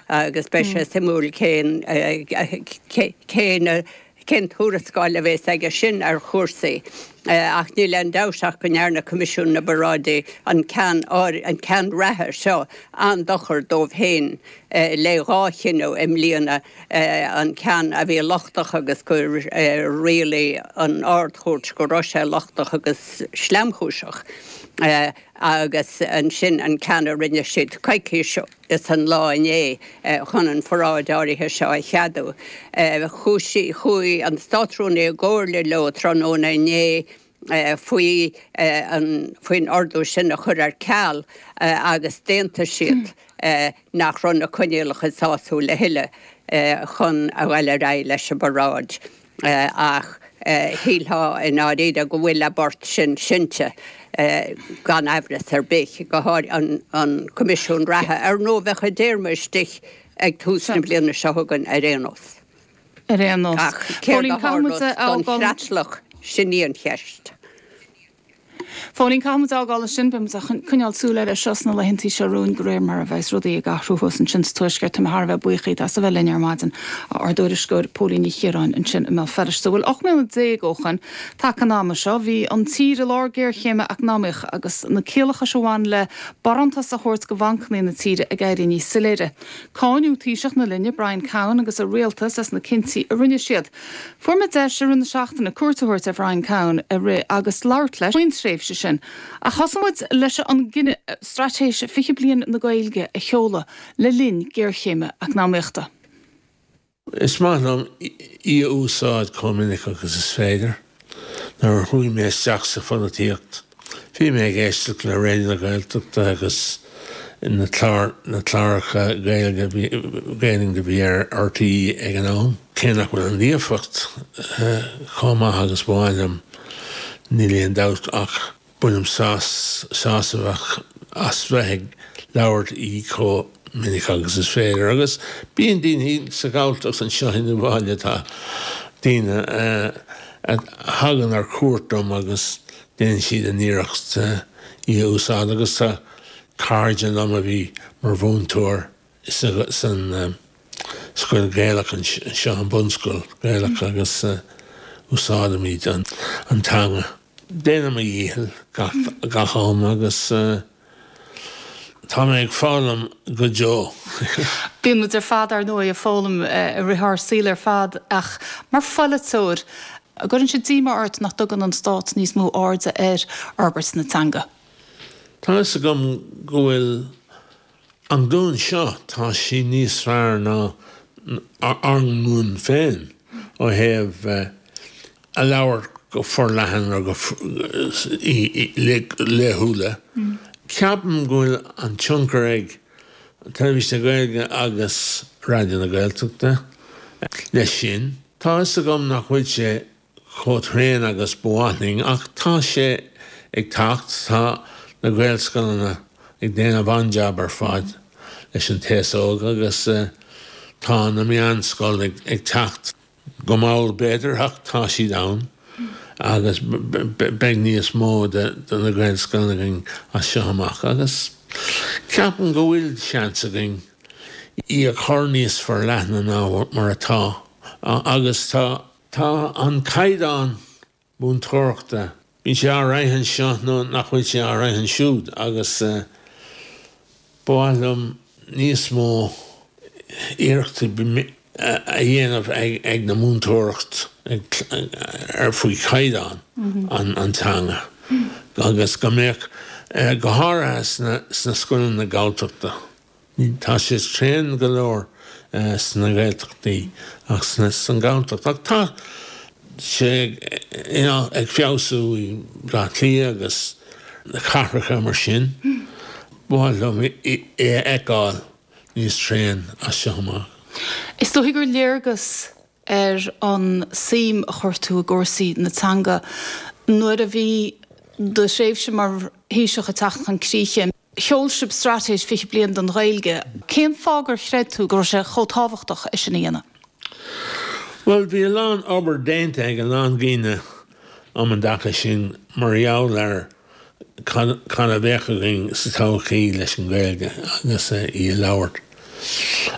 agus beidh sé suimiúil cén cé cén tuarascáil a bhéas aige sin ar chúrsaí. Ach níl aon dabht ach go ndearna Coimisiún na bParáidí an ceann an ceann reatha seo an-dochar dóibh féin. le dhá chinneadh i mbliana, an ceann a bhí lochtach agus gur rialaigh an Ard-Chúirt go raibh sé lochtach agus sleamchúiseach, agus ansin an ceann a rinne siad coicís ó. Is an lá inné, chun an pharáid áirithe seo a cheadú, chuaigh an Státrúnaí i gcomhairle leo tráthnóna inné faoi faoin ordú sin a chur ar ceal agus d'aontaigh siad nach raibh na coinníollacha sásúil a thuilleadh chun a ghabháil ar aghaidh leis an bparáid. ach shílfeá i ndáiríre go bhfuil a bport sin seinnte gan aimhreas ar bith, go háirithe an Coimisiún Reatha. Ar ndóigh, bheadh a dtéarma istigh ag tús na bliana seo chugainn ar aon nós. Ar aon nós. Ach céard a tharlós don chreatlach, sin í an cheist. Phóilín, Caithfimid fhágáil ansin, beimid ag coinneáil súil air seo sna laethanta seo romhainn de réir mar a bheas rudaí ag athrú thuas ansin sa Tuaisceart. Tá mé thar a bheith buíoch díot as a bheith linn ar maidin, a Ár dtuairisceoir. Póilín Ní Chiaráin ansin i mBéal Feirste. Bhuel, ocht mbliana déag ó shoin taca an ama seo, bhí an tír i lár géarchéime eacnamaíocha agus na ciallachais a bhain le barántais a thabhairt go bhancannaí na tíre ag éirí níos soiléire. Cáineadh Taoiseach na linne, Brian Cowen agus a rialtas as na cinntí a rinne siad. Fuair mé deis i rith na seachtaine cuairt a thabhairt ar Bhrian Cowen i rith agus labhairt leis faoin tréimhse sin, ach thosaigh muid leis an gcinneadh Straitéis 20 Bliain na Gaeilge a sheoladh le linn géarchéime eacnamaíochta. Is maith liom í a úsáid chomh minic agus is féidir. Nuair a chuaigh mé isteach sa pholaitíocht, bhí mé ag éisteacht le Raidió na Gaeltachta agus na cláracha Gaeilge a bhí ar RTÉ ag an am. Cé nach bhfuil an líofacht chomh maith agus ba mhaith liom, níl aon dabht ach Bainim sásamh as bheith ag labhairt í chomh minic agus is féidir. Agus bíonn daoine sa Ghalltacht anseo i mo bhaile, tá daoine a thagann ar cuairt dom agus déanann siad a n-iarracht í a úsáid agus tá cairde liom a bhí mar mhúinteoir san scoil Gaelach anseo, an bunscoil Gaelach, agus úsáideann muid an teanga. Déanaim mo dhícheall gach am agus tá mé ag foghlaim go deo. Bíonn muid ar fad, ar ndóigh, ag foghlaim i rith ár saoil ar fad ach mar pholaiteoir, an gcuireann sé díomá ort nach dtugann an Stát níos mó airde ar fhorbairt na teanga? Tá a fhios agam go bhfuil An ghlúin seo, tá sí níos fearr ná ár nglúin féin ó thaobh a labhairt go forleathan agus í laethúla. Ceapaim go bhfuil an tionchar ag Teilifís na Gaeilge agus Raidió na Gaeltachta leis sin. Tá 'fhios agam nach bhfuil sé chomh tréan agus ba mhaith linn ach tá sé ag teacht, tá na Gaelscoileanna ag déanamh an-jab ar fad leis an t-aos óg agus tá na meánscoil ag teacht go mall b'fhéidir ach tá siad ann agus beidh níos mó de na Gaelscoileanna againn as seo amach agus ceapaim go bhfuil seans againn í a chur níos forleithne ná mar atá agus tá. Tá an caighdeán múinteoireachta. Bíonn sé all right anseo nó nach bhfuil sé all right ansiúd agus ba mhaith liom níos mó iarrachtaí a dhéanamh ag na múinteoireacht ar faoi chaighdeán an teanga agus go mbeadh, go háirithe sna scoileanna Galltachta. Tá sé tréan go leor sna Gaeltachtaí ach san Galltacht, ach tá sé ag feabhsú i Bleá Cliath agus cathracha mar sin. Ba mhaith liom é a fheiceáil níos tréan as seo amach. Is dóigh gur léargas ar an suim a chuir tú i gcúrsaí na teanga nuair a bhí do thréimhse mar Thaoiseach ag teacht chun críche. Sheol sibh Straitéis 20 Bliain don Ghaeilge. Cén fáth gur chreid tú go raibh sé chomh tábhachtach é sin a dhéanamh? Bhuel, bhí a lán obair déanta ag a lán daoine um an dtaca sin mar gheall ar cad a bheadh againn sa todhchaí leis an Ghaeilge agus í a labhairt.